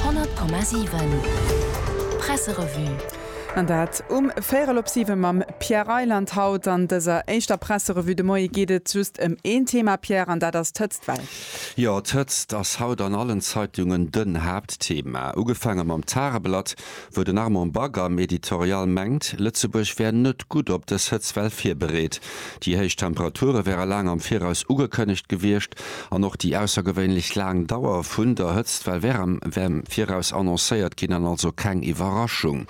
100,7 Presserevue. An dat um véierel op siwe mam Pierre Reyland. Haut an dëser éischter Presserevue de Moie geet et just ëm een Thema, Pierre, an dat ass d'Hëtzt. Well. Jo, d'Hëtzt ass haut an allen Zeitungen den Haaptthema. Ugefaange mam Tageblatt, wou den Armand Bagge am Editorial mengt, Lëtzebuerg wär net gutt op dës Hëtztwell virbereet. Déi héich Temperature wäre laang am Viraus ugekënnegt gewiescht an och déi aussergewéinlech laang Dauer vun der Hëtztwell wär am Viraus annoncéiert ginn an also keng Iwwerraschung.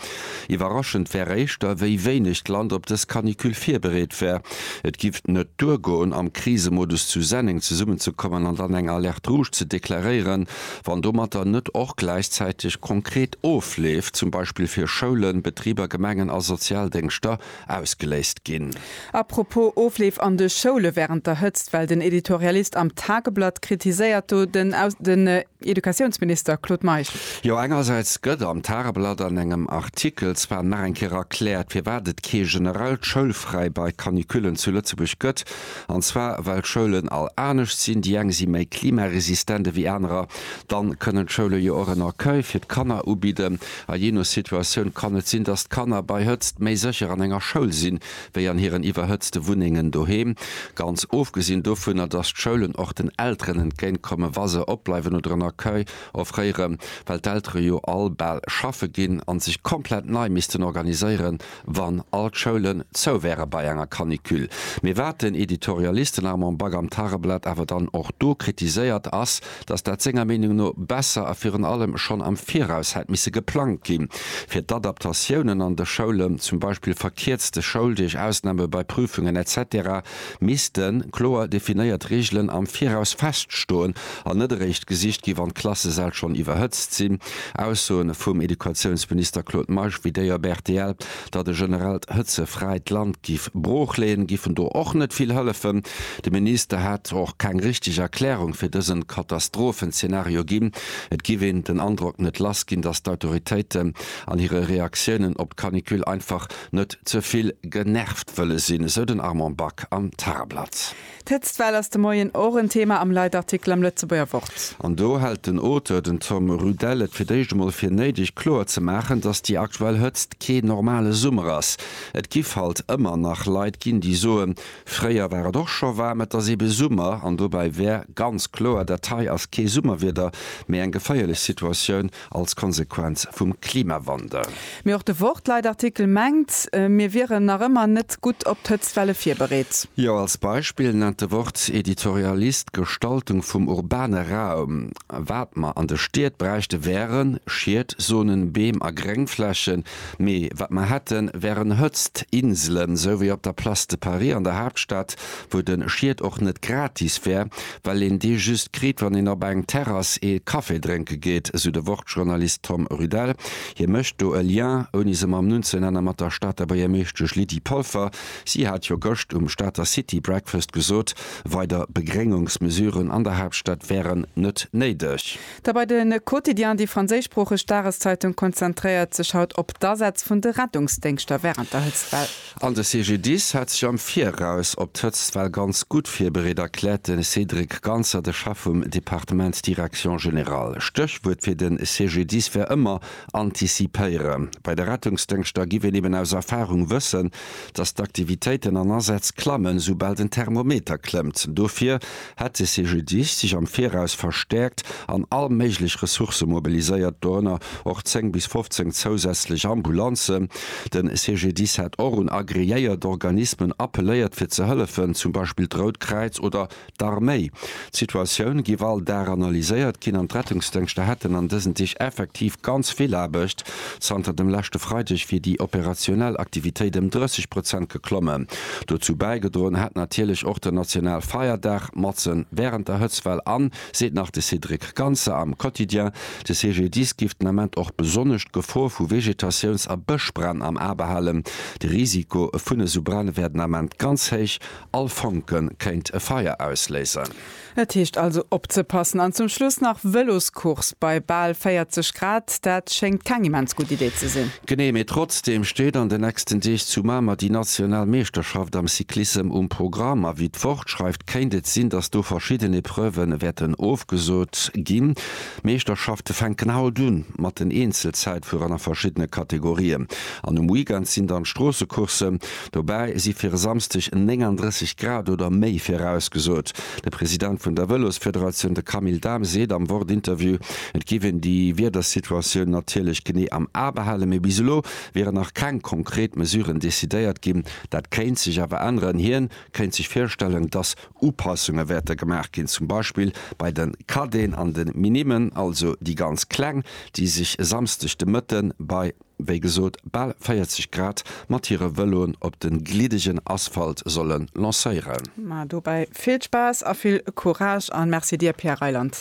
Iwwerraschend wär éischter, wéi wéineg d'Land op dës Canicule virbereet wär. Et giff net duergoen, am Krisemodus zu Senneng zesummenzekommen an dann eng Alerte rouge ze deklaréieren, Wann domatter net och gläichzäiteg konkret Ofleef, zum Beispill fir Schoulen, Betriber, Gemengen a Sozialdéngschter, ausgeléist ginn. A propos Ofleef an de Schoule wärend der Hëtzt, well den Editorialist am Tageblatt kritiséiert do den den Educatiounsminister Claude Meisch. Jo, engersäits gëtt am Tageblatt an engem Artikel zwar nach eng Kéier erkläert, firwat et kee generellt Schoulfräi bei Canicullen zu Lëtzebuerg gëtt, an zwar well d'Schoulen all anescht sinn, déi eng si méi klimaresistent ewéi anerer, dann kënnen d'Schoule jo och en Accueil fir d'Kanner ubidden a jee no Situatioun kann et sinn, dass d'Kanner bei Hëtzt méi sécher an enger Schoul sinn, wéi an hiren iwwerhëtzte Wunnengen doheem. Ganz ofgesinn dovunner, dass d'Schoulen och den Elteren entgéint kommen, wa se opbleiwen oder en Accueil offréieren, well d'Eltere jo all bal schaffe ginn an sech komplett nei missten organiséieren, wann all d'Schoulen zou wäre bei enger Canicule. Mee wat den Editorialisten Armand Bagge am Tageblatt awer dann och do kritiséiert, ass, datt dat senger Meenung no besser a virun allem schonn am Viraus hätt misse geplangt ginn, fir d'Adaptatiounen an de Schoulen, zum Beispill verkierzte Schouldeeg, Ausname bei Prüfungen, etc. missten kloer definéiert Reegelen am Viraus feststoen an net eréischt gesicht gi wann d'Klassesäll schonn iwwerhëtzt sinn. Aussoe vum Educatiounsminister Claude Meisch wéi déi op rtl, datt e generellt Hëtzefräi d'Land giff broochleeën, giffen do och net vill hëllefen. De Minister hätt och keng richteg Erklärung fir dësen Katastrophenzeenario ginn. Et giff een den Androck net lass ginn, datt d'Autoritéiten an hire Reaktiounen op d'Canicule einfach net ze vill genervt wëlle sinn, esou den Armand Back am Tageblatt. D'Hëtztwell ass de Moien och en Thema am Leitartikel am Lëtzebuerger Wort. An do hält den Auteur, den Tom Rudell, et fir d'éischt emol fir néideg kloer ze maachen, datt déi aktuell Hëtzt kee normale Summer ass. Et giff halt ëmmer nach Leit ginn, déi soen, fréier war et och scho waarm, et ass ebe Summer. An dobäi wär ganz kloer, dat hei ass kee Summerwieder, mee eng geféierlech Situatioun als Konsequenz vum Klimawandel. Mee och de Wort-Leitartikel mengt, mir wieren nach ëmmer net gutt op d'Hëtztwelle virbereet. Jo, als Beispill nennt de Wort-Editorialist d'Gestaltung vum urbane Raum. Wat mer an de Stied bräichte wären, Schiet, Zonen, Beem a Gréngflächen, Mee wat mer hätten, wären Hëtzt Inselen, sou wéi op der Place de Paris an der Haaptstad, wou den Schied och net gratis wär, well een dee just kritt, wann een op eng Terrass ee Café drénke geet, sou de Wort-Journalist Tom Rudel. Hie mécht do e Lien, ouni se mam Numm ze nennen, mat der Stater Buergermeeschtesch Lydie Polfer. Si hat jo gëscht um Stater City Breakfast gesot, weider Begréngungsmesuren an der Haaptstad wären net néideg. Da bei de Quotidien, déi franséischsproocheg Dageszeitung, konzentréiert sech haut op d'Asätz vun de Rettungsdéngschter wärend der Hëtztwell. An de CGDIS hat sech am Viraus op d'Hëtztwell ganz gutt virbereet, erkläert de Cédric Ganser, de Chef vum Departement Direction Générale. Stéchwuert fir de CGDIS wär ëmmer antizipéiere. Bei de Rettungsdéngschter giff een eben aus Erfarung wëssen, datt d'Aktivitéiten an Asätz klammen, soubal den Thermometer klëmmt. Dofir hätt de CGDIS sech am Viraus verstäerkt an all méiglech Ressourcë mobiliséiert, dorënner och 10 bis 15 zousätzlech Ambulanzen. De CGDIS hätt och un agreéiert Organismen appelléiert fir ze hëllefen, zum Beispill d'Rout Kräiz oder d'Arméi. D'Situatioun géif all Dag analyséiert ginn an d'Rettungsdéngschter hätten an dësen Deeg effektiv ganz vill Aarbecht. Zanter dem leschte Freideg wier déi operationell Aktivitéit ëm 30 Prozent geklommen. Dozou bäigedroen hätt natierlech och den national Feierdag matzen wärend der Hëtztwell an, seet nach de Cédric Ganser am Quotidien, de CGDIS géif den Ament och besonnesch d'Gefor vu Vegetatiouns a Bëschbränn am A behalen. De Risiko vun esou Bränn wär den Ament ganz héich, all Fonke kéint e Feier ausléisen. Et heescht also opzepassen. An zum Schluss nach Vëloscourse bei bal 40 Grad, dat schéngt keng immens gutt Idee ze sinn. Genee, mee trotzdeem steet an de nächsten Deeg zu Mamer déi national Meeschterschaft am Cyclissem um Programm. A wéi d'Wort schreift, kéint et sinn, datt do verschidden Epreuve wäerten ofgesot ginn. D'Meeschterschafte fänken haut un mat den Eenzelzäitfuerer a verschiddene Kategorien an um Weekend sinn dann d'Stroossecourssen. Dobäi si fir e Samsdeg 39 Grad oder méi virausgesot. De President vun der Vëlosfederatioun, de Camille Dahm, seet am Wort-Interview, et géif een déi Wiedersituatioun natierlech genee am A behalen, mee bis elo wieren nach keng konkret Mesuren decidéiert ginn. Dat kéint sech awer änneren. Hien kéint sech virstellen, datt Upassunge wäerte gemaach ginn, zum Beispill bei de Cadeten an de Minimen, also déi ganz Kleng, déi sech e Samsdeg de Mëtte bei wéi gesot, bal 40 Grad mat hire Vëloen op de gliddegen Asphalt solle lancéieren. Mä dobäi vill Spaass a vill Courage a Merci dir, Pierre Reyland.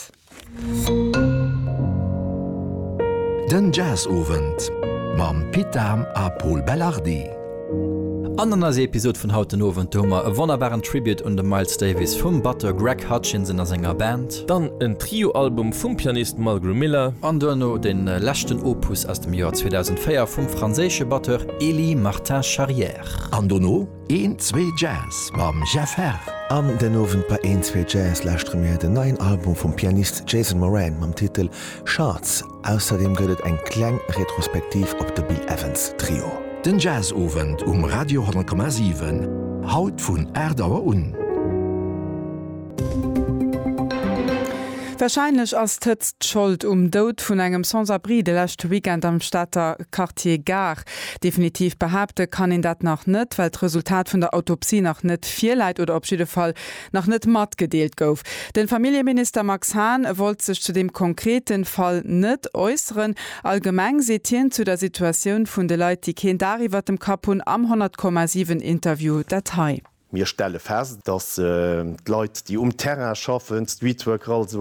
Den Jazzowend mam Pit Dahm a Pol Belardi. An an eiser Episod vun haut den Owend, do hu mer e wonnerbaren Tribute un de Miles Davis vum Batteur Greg Hutchinson a senger Band. Dann en Trio-Album vum Pianist Mulgrew Miller. An duerno de leschten Opus aus dem Joer 2004 vum franséische Batteur Elie Martin Charrière. An dono Een Zwee Jazz mam Jeff Herr. An den Owend bei Een Zwee Jazz lauschtere mir den neien Album vum Pianist Jason Moran mam Titel Shards. Ausserdeem gëtt et eng kleng Retrospektiv op de Bill Evans Trio. Den Jazzowend um Radio 10,7, haut vun 8 Auer un. Warscheinlech ass d'Hëtzt d'Schold um Doud vun engem Sans-abri de leschte Weekend am Stater Quartier Gare. Definitiv behaapte kann een dat nach net, well d'Resultat vun der Autopsie nach net virläit oder op jidde Fall nach net matgedeelt gouf. Den Familljeminister Max Hahn wollt sech zu dem konkreten Fall net äusseren. Allgemeng seet hien zu der Situatioun vun de Leit déi keen Daach iwwert dem Kapp hunn am 100 Komma 7 Interview dat hei. Mir stelle fest, dass d'Leit déi um Terrain schaffen, Streetworker, also.